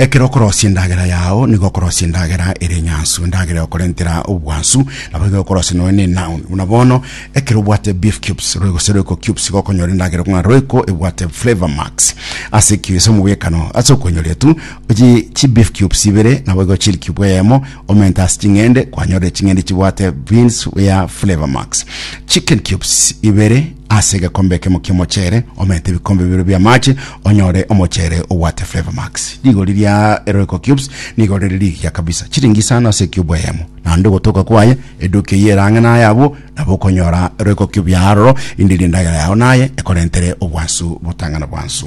Ekero okorosia endagera yao nigo okorosia endagera ere enyansu endagera egokorentera obwansu nabo igo okorosia nonya na enoun buna bono ekero obwate beef cubes roe gose roiko cubes igo okonyora endagera ng'a roiko ebwate flavor max ase ekio ase omobwekano ase okoinyora etu oji chi beef cubes ibere nabo igo chili cube eyemo omente ase ching'ende kwanyorire ching'ende chibwate beans ya flavor max chicken cubes ibere Ase egekombe ekemo ki'omocheere omente ebikombe bibere bi'amaache, onyore omocheere obwate Flavour Max. Rigori ria Royco Cubes nigo rire rigiya kabisa, chiringi isano ase ecube eyemo. Naende ogotoka kwaye, eduka eyio ere ang'e naye abwo, nabo okonyora Royco Cube yaye aroro, rinde ri endagera yao naye ekorentere obwansu botang'ana bwansu.